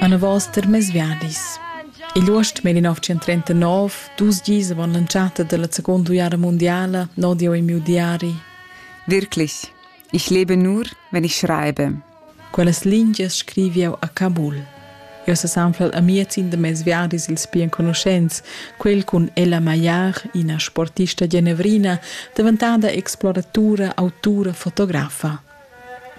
Anavos termes viadis. Igl uost 1939, dus gis avon l'entschatta della seconda guerra mondiala, nodi ho i miu diari. Wirklich, ich lebe nur, wenn ich schreibe. Quellas lingias scrivi eu a Kabul. Eu sa sanflal amiazin da mes viadis ils pli enconuschents, quel cun Ella Maillard, ina sportista genevrina, daventada exploratura, autura, fotografa.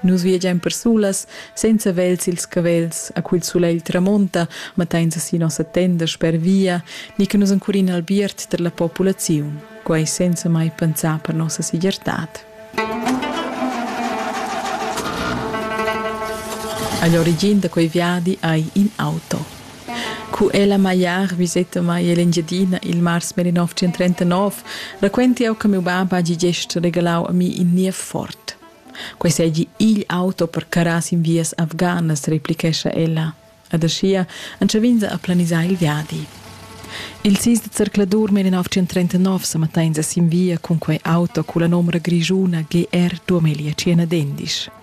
Nus viagein persulas senza vegls sils cavels, a cul sulegl tramonta, mattein si nossa tenda sper via, ni che nus encurin albiert per la populaziun, quei senza mai pensar per nossa segirtad. Agli origin da quei viadi hai in auto. Cu ella magliar viseta mai l'Engiadina il mars 1939, raquenti jau che miu bab hagi gest regalau a mi in niev fort. Quei seigi igl auto per carrar sin vias afganas, replichescha ella. Ed aschia entschav'ins a planisar il viadi. Il sis de zercladur 1939 sa matteins sin via cun quei auto culla nomra grischuna GR 2051.